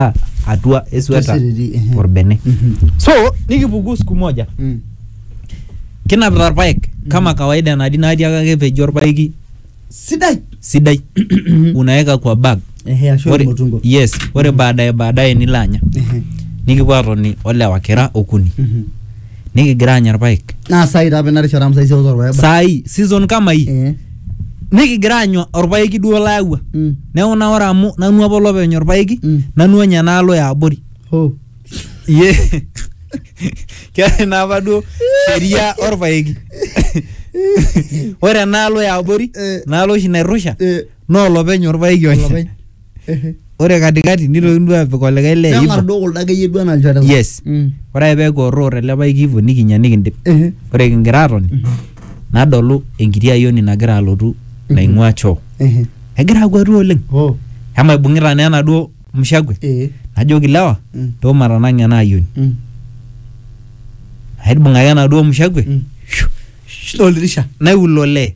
aa atua esweta Tesiriri, ehe. orbene Mhm. so nikipuku siku moja Mm. kinapita irpaek kama kawaida nadi natii ake ake peji orpaeki sidai sidai unaweka kwa bag ehe ashu Ore- ormutungo yes ore baadaye baadaye nilo anya Ehe. nikipuo atoni olewa kira okuni Mhm. nikigira aanya irpaek naa sai taa apa ina rishata amu sai seus orpaek ba- saai season kama hii Eh, nikigira aanya orpaeki duo layawua mm, neeku naa ore amu nanu apa olopeny orpaeki Mm. nanu anya enaalo ya abori oh. iye keetae naa apa duo sheria orpaeki ore enaalo ya abori Eh. naalo oshi nairrusha Eh, naa olopeny orpaeki onya olopeny. ore katikati nitokini duo apik olikae le neng'ar hivyo duo kuldo akeyie duo anaa ilchoreta yes Mm. ore ake peeku orroo tele paeki hivyo nikinya nikindip Ehe. ore kingira atoni nadolu enkiti ayioni nagira alotu naing'ua choo Ehe. egira akwatu oleng Oh. ema ibung'ita naa enaduo mshakwe Eh. najoki lewa Mm. too matanang'a ena ayioni Mm. aibung'aki enaduo mshakwe Mm. Shh, oldirisha naiulole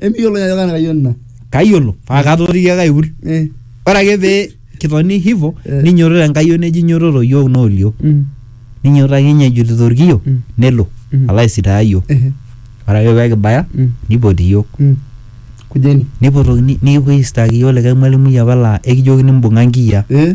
Emiyiolo ajo kaa nakayioni ina. Kayiolo paa katooriki ake aiul. Eh. Ore ake pee kitoni hivyo Eh. ninyototo enkayioni eji nyototo iyiook noolio. Mm. Ninyototo ake ninye ejutita orkiyio Mm. nelo Mm. alo aisitaaya iyiook. Ehe. Ore ake pee kibaya Mm. nipoti iyiook. Mm. Kujeni. Nipotokini nikipuoi aisitaaki iyiook likae mwalimui apa laa ekijokini imbung'a nkiyiaa. Eh.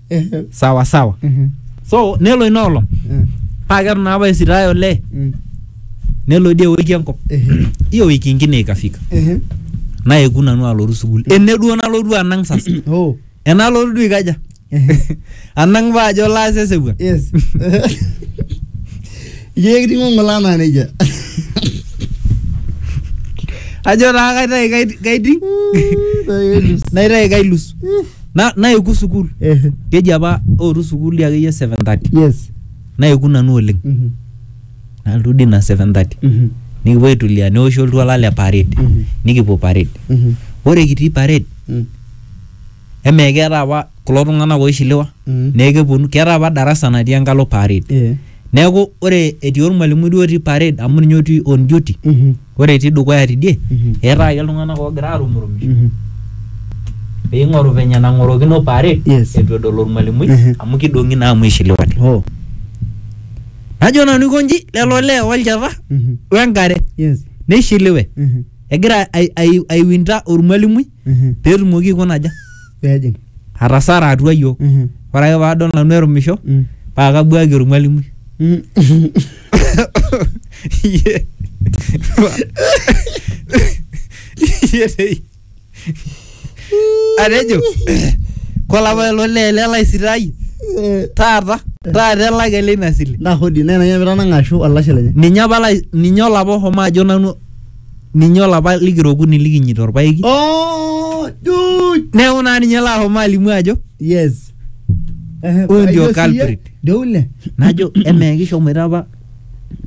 Eh, sawa sawa mhm, so nelo ina olong eh, paa keton apa esitae olee mm, nelo dii ewiki enkop eh, hiyo wiki ingine ikafika eh, naeku nanu alotu sukuul ene duo nalotu anang sasa oh, enalotu duo ikaja eh, anang paa ajo laas esewuan yes. Ijo ekiting'o ng'ole anaa nejia. ajo taa kaitai kait- kaiting Tayari. naitai kailus Na, naeku sukuul ehe keji apa ootu sukuul dii akeyie 7:30 yes naeku nanu oleng Mhm. nalotu dii ina 7:30 Mhm. nikipuo aitulia neoshi oltuala le parade Mhm. nikipuo parade Mhm. ore kitii parade Mhm. emee keeta apa kulo tung'anak oishiliwa Mhm. neekeponu keeta apa darasa natii enkalo parade Eh. neeku ore etii ormalimui duo otii parade amu ninye otii on duty Mhm. ore etii dukuya tidie Mhm. eetaa ake iltung'anak oogira aarumurumisho Mhm. piing'oru venye nang'orokino parade Yes. etu edol ormalimui Mhm. amu kidong'i naa amu ishiliwate Oh. najo nanu aikonji lelo lee olchata Mhm. wengare Yes. neishiliwe Mhm. egira ai- ai- aiwinta ormalimui Mhm. petumoki aikuna aja Pejing. atasara atua yiok Mhm. ore ake paadol nanu erumisho Mm. paa kabuaki ormwalimui Mm. Iye. Iye dei. atejo kolapa ilo lee lelaisitai Eh, taata taata elak ele ina sile Ndaa hodi nena yamira nang'ashu olashe lenye. ninye apa lai- ninye olapa oshomo ajo nanu ninye olapa likira okuni likinyita orpaeki Oh, dude. neeku naa ninye laashomo alimu ajo Yes. Eh, Huyu ndio hiyo si ye- culprit. Ndio ule. najo emaa kishomoita apa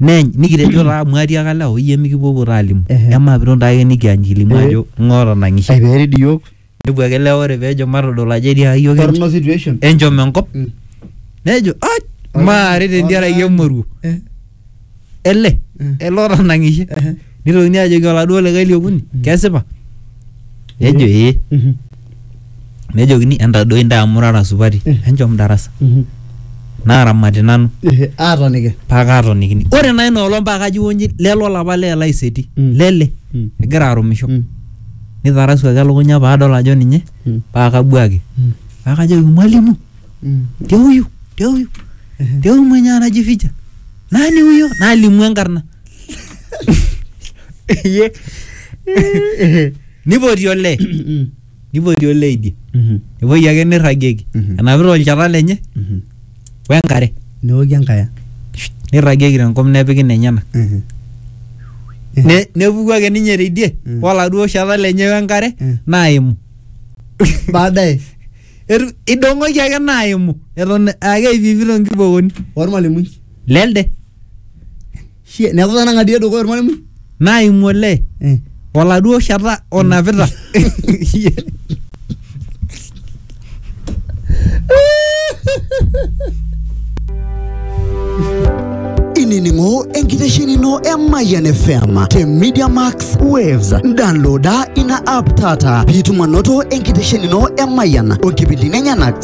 neny nikitejo taa amu atiaka lewa oyie mikipuopuo taa alimu Ehe. emaa piton taake nikianyilimu Eh. ajo ng'oto nang'ishe Aiperid iyiok. nepuo ake lewa ore pejo matodol ajo etii ayiok Torno situation. enchom enkop Mm. nejo "Aj, maare tentiaraki emoruo Eh, ele Mm. ele otanang'ishe eh. nitokini ajoki oladuo likae liokuni kesipa nejo ee Mhm. nejokini entadoi ntae amu rara supati Mm. enchom darasa Mhm. naaramati nanu Eh, Aatoniki. paa kaatonikini ore naa ina olong paa kaji wonji lelo olapa lee laiseti Mm. lele Mm. egira arumisho Mm. neitarasuaki elukunya paadol ajo ninye Mm. paa kabuaki Mm. paa kajoki mwalimu Mm. te huyu te huyu te huyu mwenye anajificha nani huyo nalimu enkarna Ye. nipoti olee Mm. nipoti olee idie Mhm. epuoi ake nirragieki Mhm. enapita olchata lenye Mhm. we nkare neoki enkaya neirragieki tenkop nepiki nenyenak Mhm. Ne- nepuku ake ninye teidie Mm. oladuo shata lenye we nkare Mm. naimu baadaye Etu- idong'oki ake naimu eton ake eipipito nkibokoni ormalimui lelde Shie, neeku tanang'adie dukuya ormalimui naimu olee Eh. oladuo shata onapita inining'o enkitesheni ino e Mayian FM te Media Max Waves. Downloada ina app taata piitum anoto enkitesheni ino e Mayian o nkipindini enyenak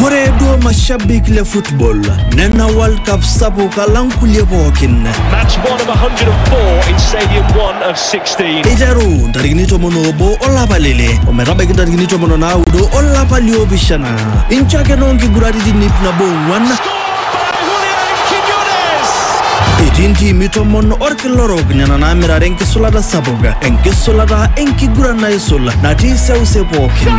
koreedo mashabik le football nena world cup sabu kalankulie pookin eiteru ntarikini tomon obo olapa lele ometabaiki ntarikini tomon onaudo olapa liopishana inchakeno nkiguraritin ip nabo ong'uan etii ntiimi tomon orkila orok nena naamirare enkisulata sapuk enkisulata enkiguran naisul natii seuse pookin